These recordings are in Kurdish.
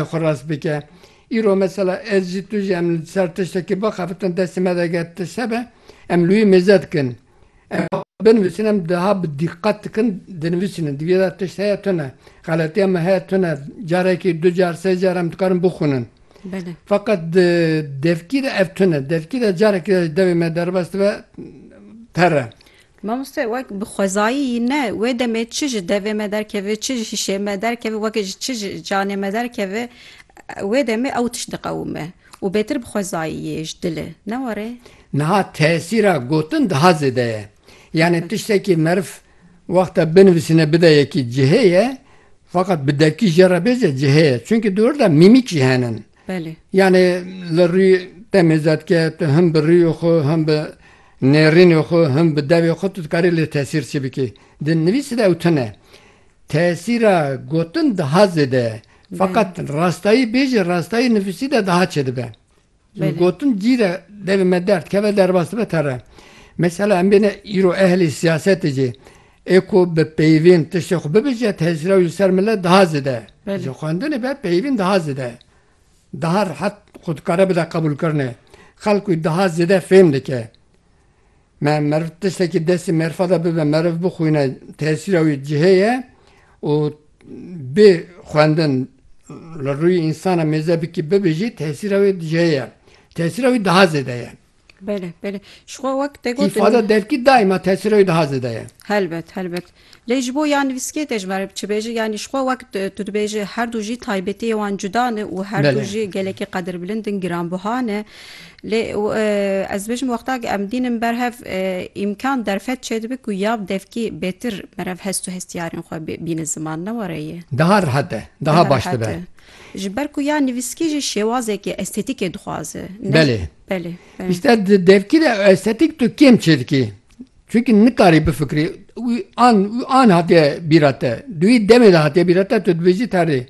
xwe rast bike. Îro mesela ez jî tu jî em li ser tiştekî bixebitin destê me de eger tişt hebe em li wî mêze dikin. Em binivîsin em diha bi dîqet dikin dinivîsînin di vê de tişt heye tune xeletiya me heye tune carekî du car sê car em dikarin bixwînin. Feqet di devkî de ev tune devkî de carekî de devê me derbas dibe pere. Mamoste wek bi xwezayî yî ne, wê demê çi ji devê me derkeve, çi ji hişê me derkeve, weke ji çi ji canê me derkeve, wê demê ew tişt diqewime û bêtir bi xwezayî yê ji dilê, ne were? Niha tesîra gotin daha zêde ye. Yanî tiştekî meriv wexta binivîsîne bide yekî cihê ye, feqet bi devkî jê re bêje cihê ye. Çimkî di wir de mîmîk jî hene. Belê. Yanê li rûyê te mêzet ke tu him bi rûyê xwe him bi nêrînê xwe him bi devê xwe tu dikarî lê tesîr çi bikî. Di nivîsê de ew tune. Tesîra gotin daha zêde ye. Feqet rastayî bêjî rastayî nivîsî de daha çê dibe. Gotin cî de devê me derdikeve derbas dibe te re. Mesela em bêne îro ehlê siyasetê jî Ê ku bi peyvîn tiştê xwe bibêje tecrîya wî li ser milet daha zêde ye. Ji xwendinê be peyvîn daha zêde ye. Daha rehet xwe dikare bide qebûlkirinê. Xelk wî daha zêde fêm dike. Me meriv tiştekî destê merifa de bibe meriv bixwîne tesîra wî cihê ye û bê xwendin li rûyê însan a mêze bikî bibêjî tesîra wê cihê ye. Tesîra wî daha zêde ye. Bele bele şixwe wek te got Îfada devkî daîma tesîra wî daha zêde ye. Helbet helbet. Lê ji bo ya nivîskê te ji me re bi çi bêje yanî şixwe wek tu dibêje her du jî taybetiyê wan cuda ne û her du jî gelekî qedirbilind in giranbiha ne. Lê ez dibêjim wextakî em dînin ber hev îmkan derfet çêdibe ku ya bi devkî bêtir meriv hest û hestiyarên xwe bîne ziman ne were yê. Daha rihet e. Daha baş dibe. Ji ber ku ya nivîskî jî şêwazekî estetîkê dixwaze. Belê. Belê. Îster devkî de estetîk tu kêm çê dikî. Çunkî nikarî bifikirî. Wî an wî an hatiye bîra te. Duî demê de hatiye bîra te tu dibêjî terrê.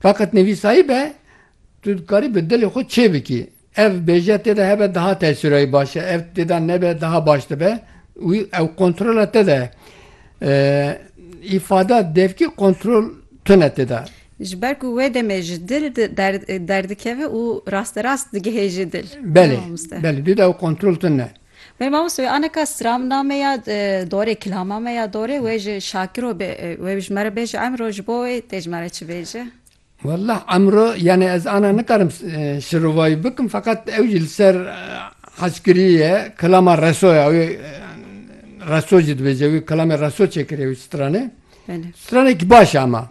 Feqet nivîsayî be tu dikarî bi dilê xwe çê bikî. Ev bêje tê de hebe daha tesîrayî baş e. Ev tê de nebe daha baş dibe. Wî ew kontrola te de ye. Îfada devkî kontrol tune tê de. Ji ber ku wê demê ji dil derdikeve û rasterast digihê ji dil. Belê, belê dû dew kontrol tune ne. Belê mamoste wê aneka stram name ya dorê kilama me ya dorê wê ji şakiro bê wê ji me re bêje emro ji bo wê tê ji me re çi bêje? Wallah emro yanê ez ana nikarim şirovayî bikim feqet ew jî li ser hezkirî ye kilama reso ya wê reso jî dibêje wê kilamê reso çêkiriye wê stranê. Stranekî baş e ema